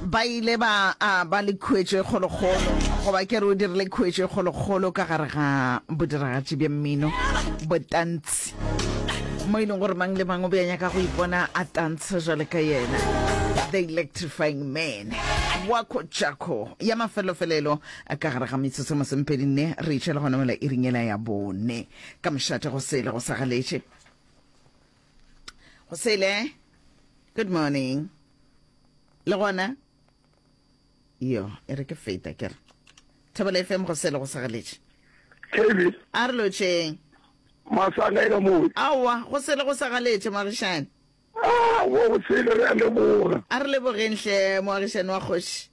Ba ile ba a ba le khuetšo e kgolokgolo, goba ke re o dirile khuetšo e kgolokgolo ka gare ga bodiragatši bja mmino, botantsi, mo e leng gore mang le mang o be a nyaka go ipona a tantsha jwale ka yena. The Electrifying Man, Wako Jacko, ya mafelofelelo ka gare ga metsotso e masomepedi nne, re itšhela gona mela iringela ya bone ka mošate go sele go sa galetše. go sele good morning le gona yo e re ke feta ke re thebele fm go sele go segaletše kb a re lotšeng masanga e ka moe aowa go sele go segaletše moagišane ah, wo go sele re a leboga a re lebogeng hle moagišane wa kgoši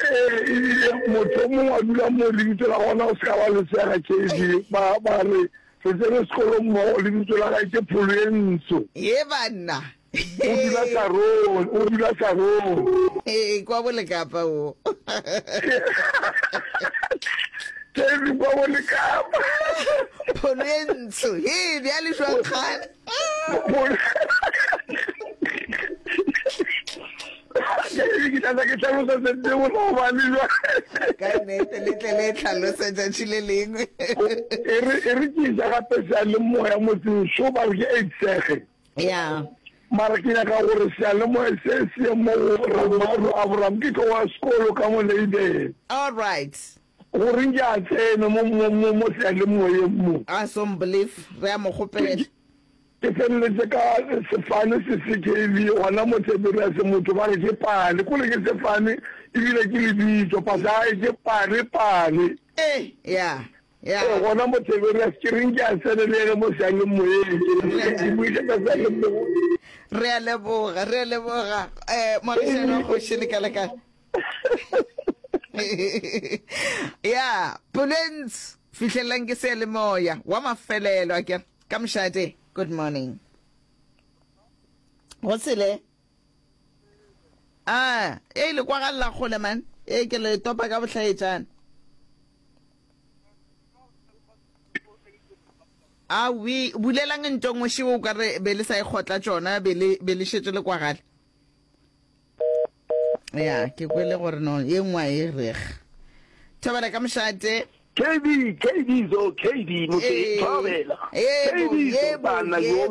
Ee, ebile motho o mongwe a dula mo lebitso la gona o se ka ba le sega JB, ba, ba re, Re tsene sekolo mmogo, lebitso la gae ke Pholwentsho. Ye banna! O dula Karol, o dula Karol. Ee, kwa Bolekapa wo. JB, kwa Bolekapa. Pholwentsho, hee, bjale jwang kgale? ka nete le tle le tlhalose tšatši le lengwe e re e re ke ja gape sa le moya motseng so ba re ke etsege ya mara ke nyaka gore sa le moya se se mo ramaro abraham ke tlo wa sekolo ka mo leibele all right Gore nke a tsene mo, mo, mo, mo sealemoyeng mo. Ah, Somblief, re a mo kgopela. Ke feleletše ka sefane se se KV, gona mo Tiberiase, motho ba re ke Pale. K'ore ke sefane, e bile ke lebitso. Pasae, ke Pale, Pale. Ee, ya, ya. Ee, gona mo Tiberiase. Ke re nke a tsene le yena mo sealemoyeng, ke re nke a buisetsa sealemoyeng. Re a leboga, re a leboga, eh, Morešana wa Kgoši, le kae, le kae? ya polens fihlelelang ke se le moya wa mafelelo ke ka mošate good morning go sele a e le kwa galla kgole man e ke le topa ka bohlaetšana a we bulelang ntong o šeo o ka re be le sa e kgotla tšona be le šetše le kwagale ya ke kwele gore no ye nngwe a e reg thobela ka mošate kd kd zo kd motse thobela kd zo bana yo